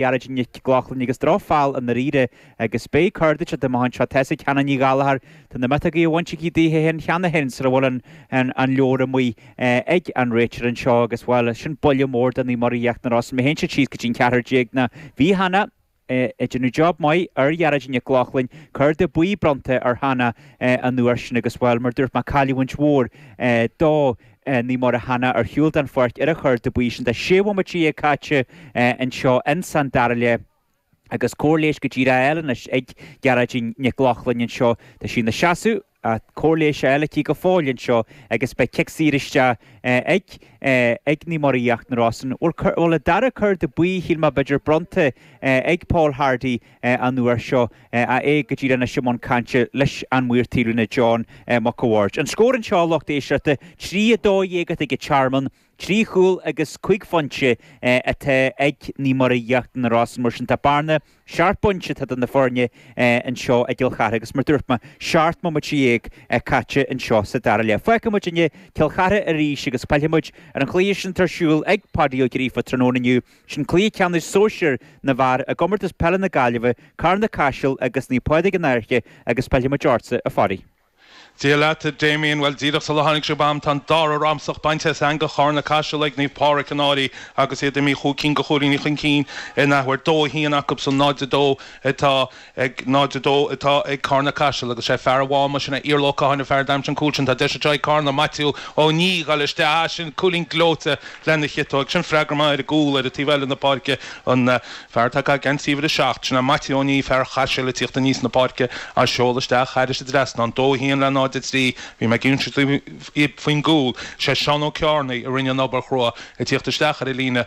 Gearóidín Nic Lochlainn agus drochfheall i ndáiríre agus beidh cárta tugtha amach anseo tá a fhios ag Hannah Ní Ghallchóir Tá na miotógaí bainte aici daoithe féin cheana féin sar a bhfuil an an an leabhar amuigh ag an réiteoir anseo agus bhuel sin buille mór do Naomh Muire Íochtar na Rosann má théann siad síos go dtí an ceathrar déag nó bhí Hannah ag déanamh job maith ar Ghearóidín Nic Lochlainn cárta buí bronnta ar Hannah an uair sin agus bhuel mar dúirt mé cailliúint mhór do Naomh Muire Hannah ar shiúl den pháirc ar an chárta buí sin tá sé bhomaite déag caite anseo ins an dara leath agus cóir leighis go díreach á fáil anois ag Gearóidín Nic Lochlainn anseo. Tá sí ina seasamh, ach cóir leighis á fáil aici go fóill anseo agus beidh cic saor isteach ag Naomh Muire Íochtar na Rosann bhuel an dara cárta buí shíl mé b'fhéidir bronnta ag Paul Hardy an uair seo, ach é go díreach anois i mbun cainte leis an maor taobhlíne John Mac a' Bhaird. An scór anseo, lucht éisteachta, trí, a dó dhéag atá ag an Tearmann, trí chúl agus cúig phointe atá ag Naomh Muire Íochtar na Rosann. Mar sin, tá bearna seacht bpointe eadar na foirne anseo i gCill Chartha agus mar dúirt mé, seacht mbomaite déag caite anseo sa dara leath. Fágfaimid inniu Cill Chartha arís agus pillfimid ar an chluiche sin atá ar siúl ag Páidí Ó Gríofa tráthnóna inniu Sin cluiche ceannais sóisir na bhfear i gComórtas Peile na Gaillimhe, Carna-Caiseal agus Naomh Pádraig An Fhairche agus pillfimid ortsa, a Pháidí. Dia leat, a Damien. Bhuel, díreach sular tháinig sibh agam, tá an dara ramsach bainte as eangach Charna-Caiseal ag Naomh Pádraig An Fhairche agus iad imithe cúig cinn de chúilíní chun cinn in athuair. 2-1 acusan 0-2 atá. ag 0, 2 atá ag Carna Caiseal agus sé fear an Mháma sin é Iarla Ó Catháin an fear a d'aimsigh an cúl sin tá deis anseo ag Carna Maitiú Ó Niadh ag dul isteach ah sin cúilín gleoite lena chiotóig sin freagra maith ar an gcúl ar an taobh eile na páirce an fear atá ag caitheamh geansaí uimhir a seacht sin é Maitiú Ó Niadh fear Chaisil ag tíocht aníos na páirce á seoladh isteach thairis an trasnán dó a haon le 0, 3 bhí mé ag insint faoin gcúl is é Seán Ó Ceárnaigh a rinne an obair chrua ag tíocht isteach ar an líne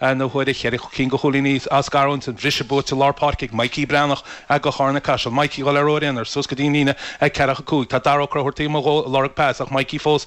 An uair a cheithre cinn de chúilíní á scarúint, an briseadh buaite lár páirce ag Mikey Breathnach do Charna Caiseal. Mikey dhul ar ruathar aonair suas go dtí an líne ceathracha cúig. Tá Dara Ó Crobhartaigh taobh amuigh dhó ag lorg pas ach Mikey fós